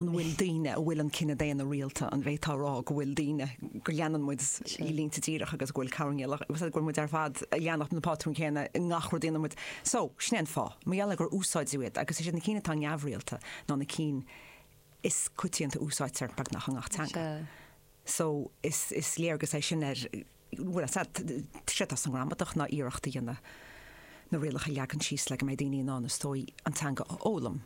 An bhfuil daoine a bhfuil an cine daonna rialta, an bhféadfá a rá go bhfuil daoine, go leanann muid línte díreach agus go bhfuil cabhair níl ach, go bhfuil muid ar fad a leanacht na pátrún céanna i ngach rud a dhéanann muid? So, sin é an fáth, mar gheall ar gur úsáideadh iad agus is iad na cinn atá neamhrialta ná na cinn is coitianta a úsáidtear beagnach i ngach teanga. So, is léargas é sin ar. bhfuil sé séard atá sa ngramadach ná iarracht a dhéanamh na rialacha a leagan síos le go mbeidh daoine in ann is dóigh an teanga a fhoghlaim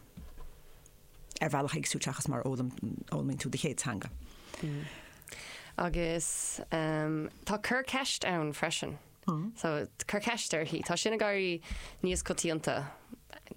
ar bhealach éagsúil seachas mar a fhoghlaimíonn tú do chéad teanga. Agus tá cur ceist ann freisin. So cur ceist uirthi. Tá sin ag éirí níos coitianta.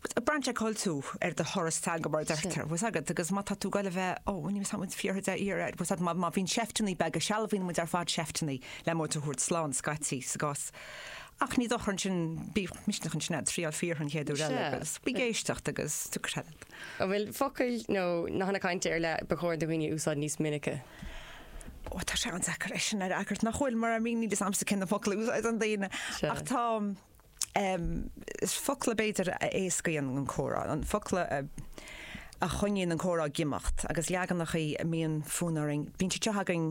Braitheann sé cá bhfuil tú ar do thuras teanga mar a deirtear, bhfuil 's agat, agus má tá tú ag goil a bheith, ó, ní bhfuil 's agat, fiafraí de shíor, ar, bhfuil 's agat, má bhíonn seifteannaí beaga, sealbhaíonn muid ar fad seifteannaí le muid a thabhairt slán, scaití, sa gcás. Ach ní dochar é sin, bíodh misneach ansin agat, triáil fiafraí an chéad uair eile, agus bí ag éisteacht agus tú credit. An bhfuil focail nó nathanna cainte ar leith ba chóir do dhaoine a úsáid níos minice? Ó, tá sé an-deacair é sin a fhreagairt, nach bhfuil, mar I mean, níl 'fhios a'msa cé na focail a úsáideann daoine, ach tá, Is focla, b'fhéidir, a éascaíonn an comhrá, focla a choinníonn an comhrá ag imeacht, agus leaganacha a mbíonn fonn orainn, bíonn siad seo againn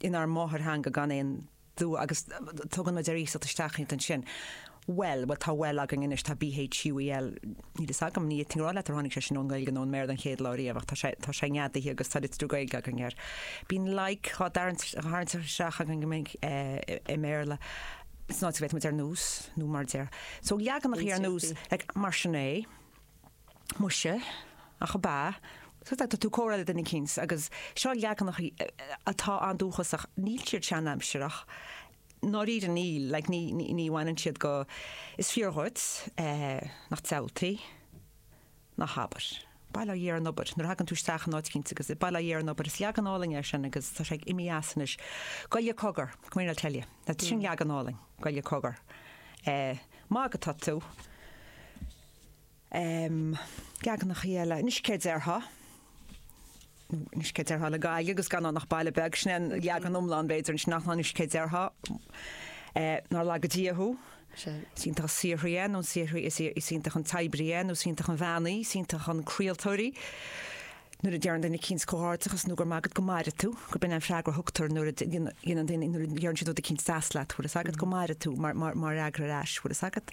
inár máthairtheanga gan aon dua agus tugann muid ar iasacht isteach iad ansin. Bhuel, bhuel, tá bhuel againn anois, tá b, h, u, e, l, níl fhios agam, ní fhéadfainn a rá leat ar tháinig sé sin ón nGaeilge nó ón mBéarla an chéad lá riamh ach tá sé, tá sé neadaithe agus tá litriú Gaeilge againn air. Bíonn like á tharraingt isteach againn i mBéarla. in áit a bhféadfadh muid ar nós, nó mar a deir, so leaganacha ar nós like mar sin é, muise, ach ab ea, so tá tú ag comhrá le duine eicínt agus seo leaganacha atá an-dúchasach, níl siad seanaimsireach, i ndáiríre níl, like ní ní bhaineann siad go, is fíor dhuit, nach diabhaltaí. Ná habair. Bail ó Dhia ar an obair, nuair a thagann tú isteach in áit eicínt agus bail ó Dhia ar an obair. Is leagan álainn é sin agus tá sé ag imeacht as anois. Goile cogar, come here I'll tell you. Now sin leagan álainn, goile cogar. Eh, ag magadh atá tú. Em, leaganachaí eile, anois céard déarfá? Anois céard déarfá le Gaillimh agus gan ann ach baile beag? Sin é an leagan iomlán, b'fhéidir, ansin, ach anois céard déarfá? Nár laga Dia thú. Is iontach an saothraí é, nó an saothraí, is iontach an t-oibrí é, nó is iontach an bhean í, is iontach an craoltóir í. Nuair a deireann duine eicínt comhghairdeachas nó go raibh maith agat go maire tú, gurb in an freagra a thugtar nuair a dhéanann duine, nuair a deireann siad rud eicínt deas leat, bhfuil fhios agat go maire tú mar fhreagra ar ais, bhfuil fhios agat?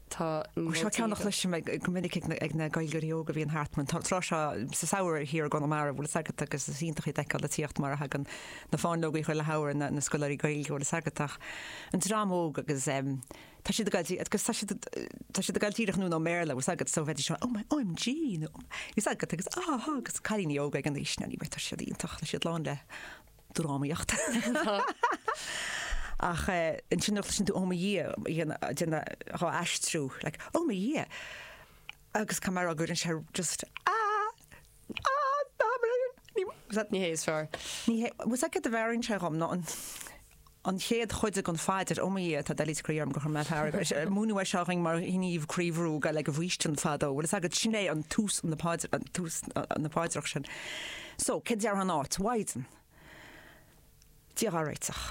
Tá. Seo ceann a chloisim go minic ag na Gaeilgeoirí óga a bhíonn thart an tráth seo sa samhradh thiar i gConamara, bhfuil a fhios agat, agus is iontach iad a fheiceáil a tíocht mar a thagann na fáinleogaí chuile shamhradh, na na scoláirí Gaeilge, bhfuil a fhios agat, ach an dream óg agus tá siad ag fháil dí- agus tá siad tá siad ag fháil díreach ón ón mBéarla, bhfuil a fhios agat, so bheidís oh my OMG nó bhfuil a fhios agat agus ah ha agus cailíní óga ag an aois, now anyway tá siad iontach tá siad lán le drámaíocht. Ach ansin nuair a chloiseann tú Oh my Dhia, ag déanamh dhá aistriú, like, Oh my Dhia! Agus cén mearú a chuireann sé just Ah! Ah! Ná mar sin! Ní, bhfuil 's agat, Ní hé is fearr. ní hé, bhfuil 's agat céard a mheabhraíonn sé dhom ná an, an chéad chuid den phaidir Ó mo Dhia tá doilíos croí orm gur chuir mé fearg ort agus múineadh é seo dhúinn mar ghníomh croíbhrú le haghaidh an bhfaoistin fadó. Bhfuil fhios agat, sin é an tús tús na paidreach sin. So, céard déarfá ina áit, Mhaighdean. Dia dhá réiteach.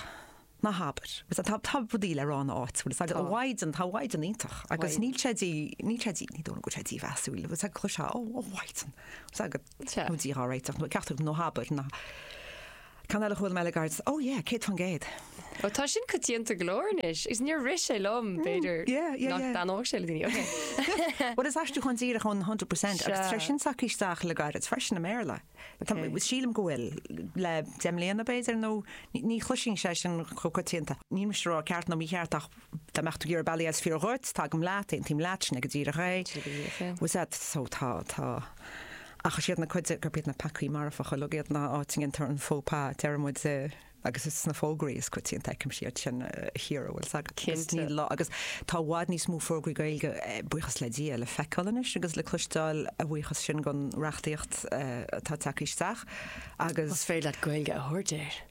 Ná habair. Tá rudaí le rá ina áit, bhfuil fhios agat. Tá. Mhaighdean, tá Mhaighdean iontach agus níl sé dí, níl sé dí, ní déarfá go raibh sé dímheasúil, bhfuil fhios agat, chloisfeá, Ó, Mhaighdean, fhios agat. Sea. Dia dhá réiteach, nó ceachtar nó ná habair, na Ceann eile a chuala mé le gairid, oh yeah, céad faoin gcéad. Ó, tá sin coitianta go leor anois, agus níor rith sé liom, b'fhéidir, nach dtaitneodh sé le daoine, ok. Bhuel, is aistriúchán díreach ón hundred percent, agus tá sé sin tagtha isteach le gairid freisin i mBéarla. Sílim go bhfuil, le deich mbliana, b'fhéidir, nó ní chloisfeá é sin chomh coitianta. Níl mise ag rá ceart nó mícheart, ach Dá mbeadh tú ag iarraidh bealaí is fearr dhuit, tagaim leat, aontaím leat, sin é go díreach é. Sin é go díreach é. Bhfuil 's agat, so tá, tá. Ach is iad na cuid, gurb iad na peacaí marfacha uilig iad ná áit a ndéantar an faux pas, a deireann muid, agus is sna fógraí is coitianta a fheicimse iad sin a Chiara, bhfuil 's agat, agus Cinnte. níl dabht, agus tá i bhfad níos mó fógraí Gaeilge, buíochas le Dia, le feiceáil anois agus le cloisteáil, a bhuíochas sin don reachtaíocht atá ag teacht isteach, agus. Más féidir leat Gaeilge a thabhairt air.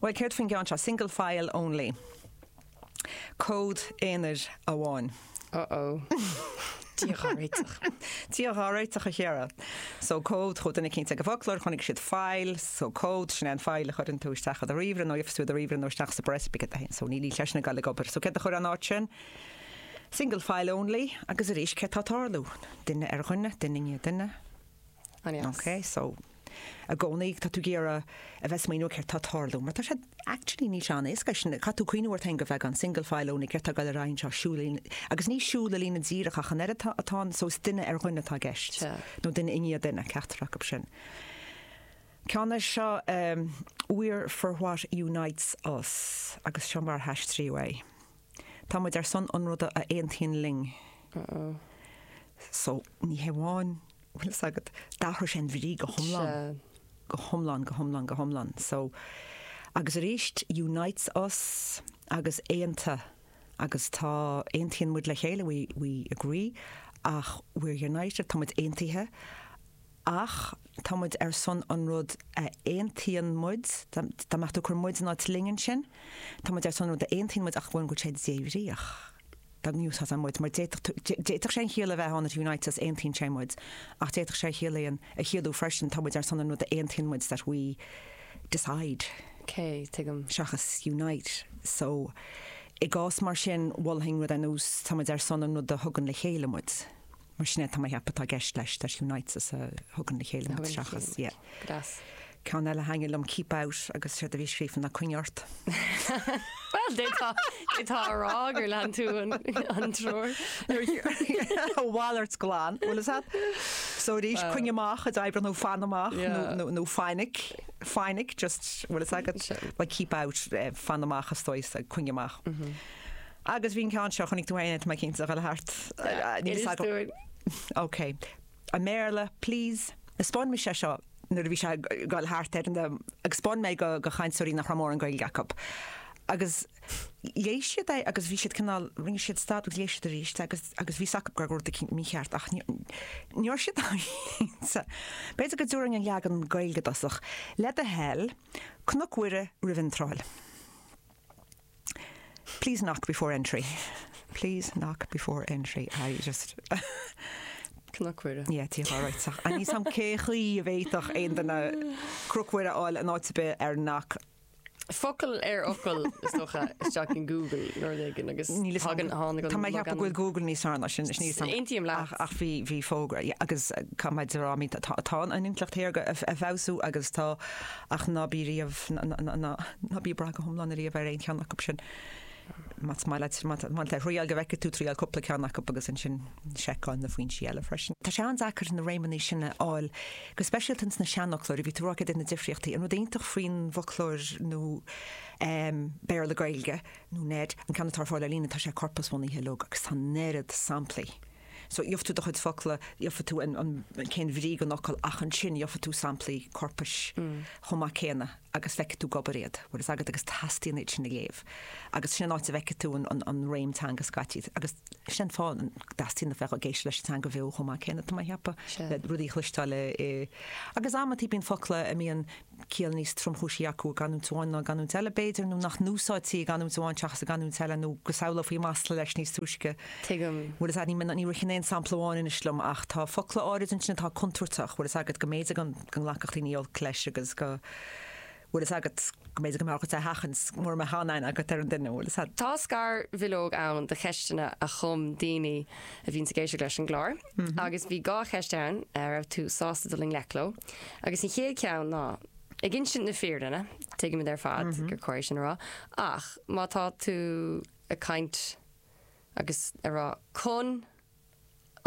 Bhuel, céard faoin gceann seo, single file only, comhad aonair amháin? Oh oh. Dia dhá réiteach. Dia dhá réiteach, a Chiara. So comhad, chuaigh duine eicínt ag an bhfoclóir, chonaic siad file, so comhad, sin é an file a chuireann tú isteach i do ríomhaire nó a bhíos i do ríomhaire nó isteach sa bpreas beag sin. So níl sé sin ag gabháil ag obair. So céard a chuirfeá in áit sin? Single file only. Agus arís, céard atá ag tarlú? Duine ar dhuine, duine i ndiaidh duine. Go deas. Ok, so i gcónaí tá tú ag iarraidh a bheith ag smaoineamh céard tá ag tarlú, mar tá sé actually níl sé an-éasca é sin, caithfidh tú cuimhniú ort féin go bhfeiceann tú single file only, céard tá ag gabháil ar aghaidh anseo, siúl i líne, agus ní siúl i líne díreach ach an oiread atá, atá an, so is duine ar dhuine atá i gceist, nó duine i ndiaidh duine, ceachtar acu sin. Ceann eile seo our for what unites us, agus seo mar a haistríodh é. Tá muid ar son an rud a aontaíonn linn. So, ní hamháin, bhfuil 'fhios agat, d'athraigh sé an bhrí go hiomlán, go hiomlán, go hiomlán, go hiomlán. So, agus arís, unites us agus aonta agus tá, aontaíonn muid le chéile, we, we agree ach we're united, tá muid aontaithe, Ach tá muid ar son an rud a aontaíonn muid, dá mbeadh tú ag cur muid in áit linn ansin, tá muid ar son an rud a aontaíonn muid ach go bhfuil an rud sin débhríoch. Dá n-úsáidfeá muid, mar d'fhéadfadh sé an chiall a bheith ann it unites us, aontaíonn sé muid, ach d'fhéadfadh sé a chiallú, a chiallú freisin tá muid ar son an rud a aontaíonn muid that we decide. K, tuigim. seachas unite. So, i gcás mar sin, mholfainn rud ar nós tá muid ar son an rud a thugann le chéile muid. Mar sin é, tá mé atá i gceist leis, leis Unites, a thugann le chéile muid seachas, yeah. Ceann eile a thaitnigh liom, Keep Out, agus séard a bhí scríofa ná Coinnigh Ort. Bhuel, d'fhéadfá, d'fhéadfá a rá gur lean tú an, an treoir. A mhalairt ghlan, bhfuil 'fhios agat, so arís, coinnigh amach a d'oibreodh nó fan amach, nó, Yeah. nó, nó fainic, fainic, just, bhfuil 'fhios agat, well, keep out, eh, fan amach, a stoi, so coinnigh amach. Agus bhí an ceann seo, chonaic tú fhéin, mé cinnte, a ghoil thart. Níl fhios agam. OK. I mBéarla, please. Spáin mise é seo nuair a bhí sé ag gol thart ar an, agus spáin mé do chainteoirí nach raibh mórán Gaeilge acu. Agus léigh siad é agus bhí siad cineál, rinne siad stad agus léigh siad arís agus agus bhí a fhios acu go raibh rud eicínt mícheart ach ní raibh siad cinnte. B'fhéidir go dtabharfainn an leagan Gaeilge i dtosach. Le do thoil, Cnoc Mhuire roimh iontráil. Please knock before entry. Please knock before entry. I just. Cnoc Mhuire. Ie, Tigh Ghá Raitseach. Níl a fhios agam cé chaoi a bhféadfadh aon duine Cnoc Mhuire a fháil in áit ar bith ar knock. Focal ar fhocal, is dócha, isteach in Google nó rud éigin agus thagann, tháinig an. Tá mé ag ceapadh go bhfuil Google níos fearr ná sin, is níos. Aontaím leat. Ach bhí, bhí fógra, ie, agus cá mbeidh, tá an intleacht shaorga ag feabhsú agus tá Ach ná bí riamh, ná bí ag brath go hiomlán ariamh ar aon cheann acu sin. Más maith leat, má tá tú ag triail, go bhfeicfidh tú triail cúpla ceann acu agus ansin seiceáil na foinsí eile freisin. Tá sé an-deacair na réimeanna sin a fháil, go speisialta ins na seanfhoclóirí. A bhí tú a rá, céard iad na difríochtaí? An rud iontach faoin bhfoclóir nua Béarla-Gaeilge, nó NEID, an ceann atá ar fáil ar líne, tá sé corpasbhunaithe, leoga, agus tá an oiread samplaí. So gheobhaidh tú do chuid focla, gheobhaidh tú cén bhrí don fhocal ach ansin gheobhaidh tú samplaí corpais chomh maith céanna agus feicfidh tú ag obair iad, bhfuil a fhios agat, agus teastaíonn iad sin a léamh. Agus sin an áit a bhfeicfidh tú an réim teanga scaití agus sin an fáth a dteastaíonn a bheith ag éisteacht leis an teanga bheo chomh maith céanna, tá mé a cheapadh, le rudaí a chloisteáil i. Agus amantaí bíonn focla a mbíonn ciall níos tromchúisí acu i gcanúint amháin ná i gcanúint eile, b'fhéidir, nó nach n-úsáidtí i gcanúint amháin seachas i gcanúint eile, nó go samhlófaí masla leis níos túisce. Tuigim. Bhfuil 'fhios a'd, ní, ní ritheann aon sampla amháin anois liom ach tá focla áirid ansin atá contúirteach, bhfuil 'fhios agat, go mb'fhéidir go, go nglacfadh daoine olc leis agus go, bhfuil 'fhios agat, go mb'fhéidir go mbeadh ort é a sheachaint mura mbeadh an-aithne agat ar an duine, bhfuil 'fhios a'd. Tá scarbhileog ann de cheisteanna a chum daoine a bhíonns ag éisteacht leis an gclár. Agus bhí dhá cheist ann a raibh tú sásta dul i ngleic leo, agus an chéad cheann ná, ag insint na fírinne, tuigimid ar fad gur chóir é sin a rá, ach má tá tú ag caint agus ag rá chun,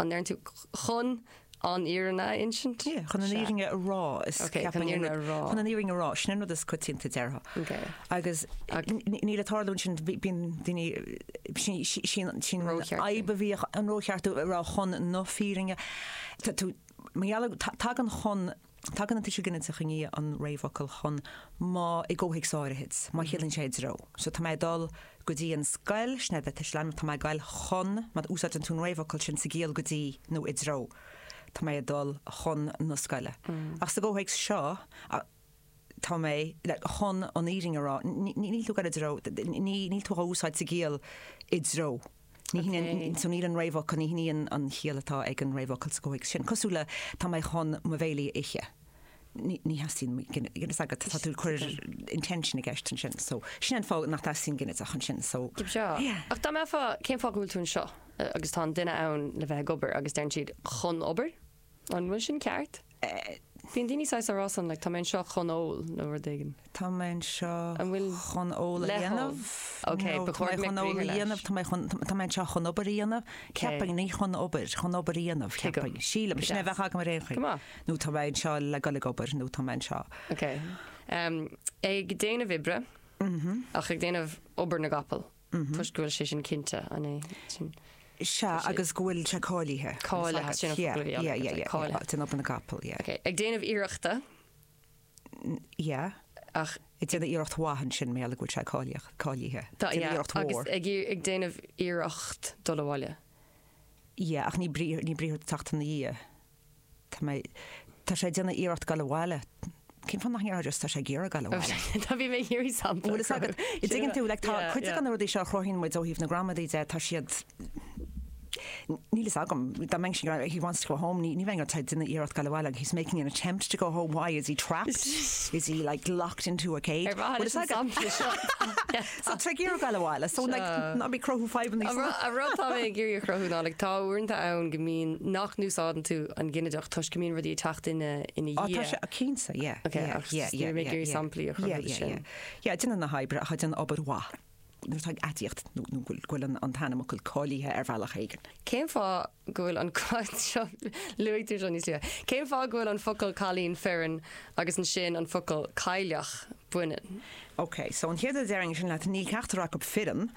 an ndeir tú chun an fhírinne a insint? Sea, chun an fhírinne a rá, is ceapaim, chun an fhírinne a rá, sin an rud is coitianta, déarfá. agus níos le tarlú ansin, bíonn daoine, sin an fhadhb a bhíodh, an rócheartú ar chun na fírinne. Tagann chun, tagann an tuiseal ginideach i ndiaidh an réamhfhocail chun, má, i gcomhthéacsanna áirithid, má chiallaíonn sé i dtreo. So tá mé ag dul go dtí an scoil, sin é an tuiseal ainm, tá mé ag gabhail chun, má úsáideann tú an réamhfhocal sin sa gciall go dtí nó i dtreo, tá mé ag dul chun na scoile. Ach sa gcomhthéacs seo, tá mé chun an fhírinne a rá, níl tú ag rá i dtreo, níl tú á úsáid sa gciall 'i dtreo'. Ní hionann, so níl an réamhfhocal, ní hionann an chiall atá ag an réamhfhocal sa gcomhthéacs sin. Cosúil le, tá mé chun mo bhéile a ithe. Ní, ní theastaíonn mo ghin, ginideach agat, tá tú ag cur intention i gceist ansin, so sin an fáth nach dteastaíonn ginideach ansin, so. Dob seo. Yeah. Ach dá mbeifeá, cén fáth go bhfuil tú anseo? Agus tá an duine ann le bheith ag obair agus deireann siad chun obair? An bhfuil sin ceart? Bíonn daoine saghas ar fás ann, like, tá mé anseo chun ól, nó rud éigin. Tá mé anseo An bhfuil chun ól a le hól? dhéanamh. Ok, No, ba tá mé chóir go mbeadh chun ól a briathar leis. dhéanamh, tá mé chun, tá mé anseo chun obair a dhéanamh. Ceapaim, ní chun obair, chun obair a dhéanamh, Cé go- ceapaim. Sílim, go sin a deas. bheadh agam ar aon chaoi. Go maith. Nó tá mé anseo le dul ag obair, nó tá mé anseo. Ok. Em, ag déanamh oibre, ach ag déanamh obair na gcapall. toisc go bhfuil sé sin cinnte, an é sin? Sea, agus go bhfuil sé cáilithe. Cáilithe, sin an focal a bhí agam, Yeah, yeah, yeah, cáilithe. sin obair na gcapall, yeah. Okay. Ag déanamh iarrachta, Yeah, ach ag déanamh iarracht mhaith an sin mar gheall go bhfuil sé cáilíoch- cáilithe. tá Déanamh yeah, iarracht agus mhór. ag, iar- ag déanamh iarracht dul abhaile. Yeah, ach ní brí- ní briathar ag teacht ina dhiaidh. Tá mé, tá sé ag déanamh iarracht dul abhaile. Cén fáth nach ndéarfá just tá sé ag iarraidh dul abhaile? Tá, bhí mé ag iarraidh sampla a Bhfuil a fhios agat, cruthú. an dtuigeann tú, like, tá cuid de Yeah. na rudaí seo a chruthaíonn muid ó thaobh na gramadaí de, tá siad, níl a fhios agam, dá mba é sin, he wants to go home, ní, ní bheidh ag déanamh iarracht dul abhaile, he's making an attempt to go home, why, is he trapped? Is he, like, locked into a cage? Ar mhaith Bhfuil leis a fhios an agat? sampla seo? So trí gheata an bhaile. So like ná bí ag cruthú fadhbanna. An rud an rud tá mé ag iarraidh a chruthú ná like tá uaireanta ann go mbíonn nach n-úsáideann tú an ginideach toisc go mbíonn rudaí ag teacht ina ina dhiaidh. Á tá sé cinnte yeah. Ok ach yeah yeah nílim ag iarraidh samplaí a chruthú de sin. Yeah déanamh na hoibre ach ag déanamh obair mhaith nuair atá aidiacht nó nó go bhfuil an t-ainmfhocal cáilithe ar bhealach éigin. Cén fáth go bhfuil an ceist seo, luaigtear seo níos luaithe, cén fáth go bhfuil an focal cailín fireann agus ansin an focal cailleach baineann? Ok, so an chéad rud a déarfainn ansin leat, níl ceachtar acu fireann,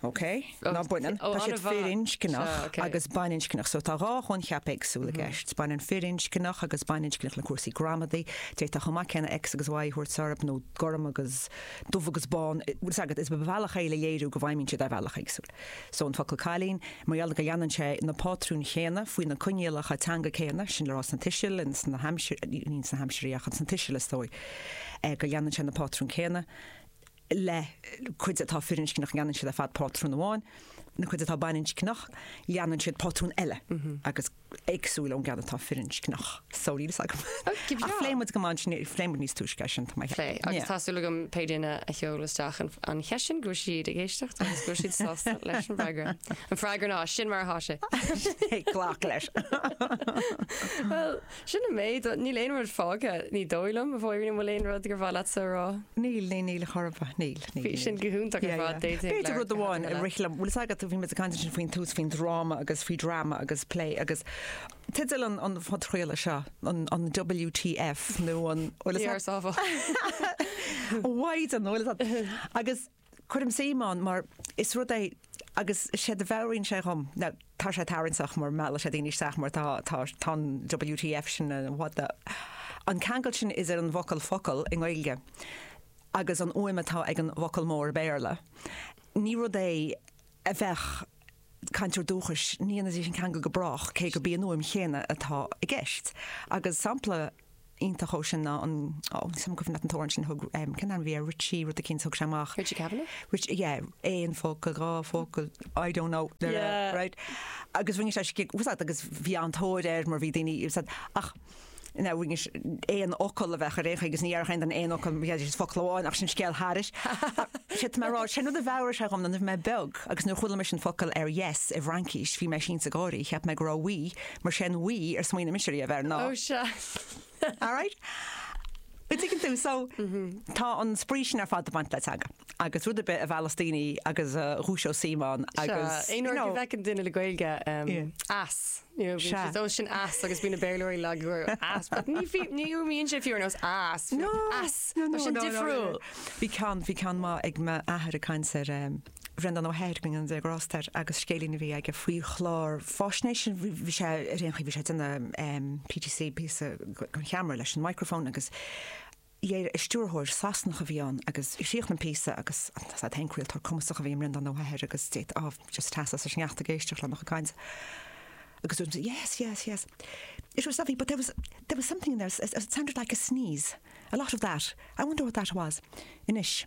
ok, ná baineann, tá siad firinscneach agus baininscneach, so tá dhá choincheap éagsúil i gceist, baineann firinscneach agus baininscneach le cúrsaí gramadaí, d'fhéadfá chomh maith céanna X agus Y a thabhairt orthu, nó gorm agus dubh agus bán, agus is bealach é le léiriú go bhfeidhmíonn siad ar bhealaí éagsúla. So an focal cailín, mar gheall go leanann sé na pátrúin chéanna faoi na coinníollacha teanga céanna, sin le rá sna tuisil, ins na haimsir, ní sna haimsirí ach ins na tuisil is dóigh go leanann sé na pátrúin céanna leath chuid atá firinscneach leanann siad ar fad pátrún amháin, an chuid atá baininscneach leanann siad pátrún eile agus éagsúil ón gceann atá firinscneach. So níl a fhios agam. Ach phléigh muid go maith ansin, phléigh muid níos túisce ansin, tá mé ag Pléigh. Agus ceapadh. tá súil agam pé duine a sheol isteach an an cheist sin go bhfuil siad ag éisteacht agus go bhfuil siad sásta leis an bhfreagra. An freagra ná, sin mar atá sé. Yeah, glac leis. Bhuel, sin an méid. Níl aon rud fágtha, ní dóigh liom, a Mháirín, an bhfuil aon rud gur mhaith leatsa a rá? Níl, níl, níl, go maith, níl. Bhí sin go hiontach ar fad, d'fhéadfadh leabhar B'fhéidir rud amháin a rith liom, bhfuil 'fhios agat, bhí muid ag caint ansin faoin tús faoin dráma agus faoi drama agus plé agus teideal an an phodchraolta seo, an an WTF nó an bhfuil 'fhios Bhí ag ars áfach. mhaighdean nó bhfuil 'fhios a'd. Agus cuirim suim ann mar is rud é agus séard a mheabhraíonn sé dhom, ná tá sé tarrainteach mar meallann sé daoine isteach mar tá tá tá an WTF sin, an what the, an ceangal sin is ar an bhfocal focal i nGaeilge, agus an fhuaim atá ag an bhfocal mór i mBéarla, ní rud é a bheadh cainteoir dúchais, ní dhéanfaidís an ceangal go brách, cé gurb í an fhuaim chéanna atá i gceist. Agus sampla iontach dhó sin ná an, ó, níl fhios 'am an cuimhin leat an t-amhrán sin a thug, cén t-ainm a bhí air, Richie rud eicínt a thug sé amach. Richie Kavanagh? Richie, yeah, aon focal, dhá focal, I don't know, yeah, right. Agus rinne sé scig, úsad, agus bhí an-tóir air mar bhí daoine, úsad, ach. ina rinne sé aon fhocal a bheadh ar aon chaoi agus ní dhearna aon duine aon fhocal, bhí sé is focal amháin ach sin scéal thairis. Sin mé ag rá, sin rud a mheabhraigh sé dhom nuair bhí mé beag agus nuair chuala mise an focal ar yes i bhFraincís bhí mé sínte ag gáirí, cheap mé go raibh oui mar sin níor smaoinigh mise riamh air ná. Oh sea. Alright? An dtuigeann tú? So tá an spraoi sin ar fad ag baint le teanga agus rud ar bith a mheallas daoine agus a dhúiseos suím ann agus, you know. Sea, aon uair a bhfeiceann duine le Gaeilge, em, ass. Sea. Dó sin as agus bhí na Béarlóirí lag go raibh as. But ní bhí- ní fhíonn sé fiú ar nós as. No, As. no, no, Tá sin no, no, no. difriúil. Bhí ceann, bhí ceann maith ag m'athair ag caint ar em, Bhreandán Ó hEithir, go ndéana Dia grásta air, agus scéilín a bhí aige faoi chlár faisnéise, bhí- bhí sé ar aon chaoi, bhí sé ag déanamh em, PTC píosa chun ceamara leis an microphone agus léir stiúrthóir Sasanach a bhí ann agus chríochnaigh sé an píosa agus 's ar ndóigh, craoltóir cumasach a bhí i mBreandán Ó hEithir agus ó just teas as an sneachta ag éisteacht lena chaint agus dúirt sí yes, yes, yes. It was lovely but there was, there was something in there, it sounded like a sneeze, a lot of that. I wonder what that was. Anois.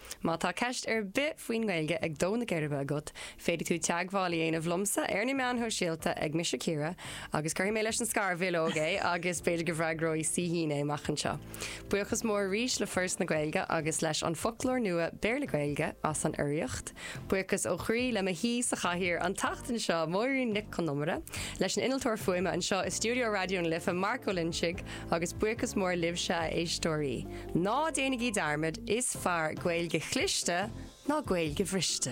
Má tá ceist ar bith faoin nGaeilge ag dó na geirbe agat, féadfaidh tú teagmháil a dhéanamh liomsa ar na meáin shóisialta ag Mise Ciara agus cuirfidh mé leis an scarbhileog é agus b'fhéidir go bhfreagróidh Saoithín é amach anseo. Buíochas mór arís le Foras na Gaeilge agus leis an bhFoclóir Nua Béarla-Gaeilge as an urraíocht. Buíochas ó chroí le mo haoi sa chathaoir an tseachtain seo, Máirín Nic Con Iomaire, leis an innealtóir fuaime anseo i stiúideo Raidió na Life, Marc Ó Loingsigh, agus buíochas mór libhse, a éisteoirí. Ná déanaigí dearmad, is fearr Gaeilge chliste ná Gaeilge bhriste.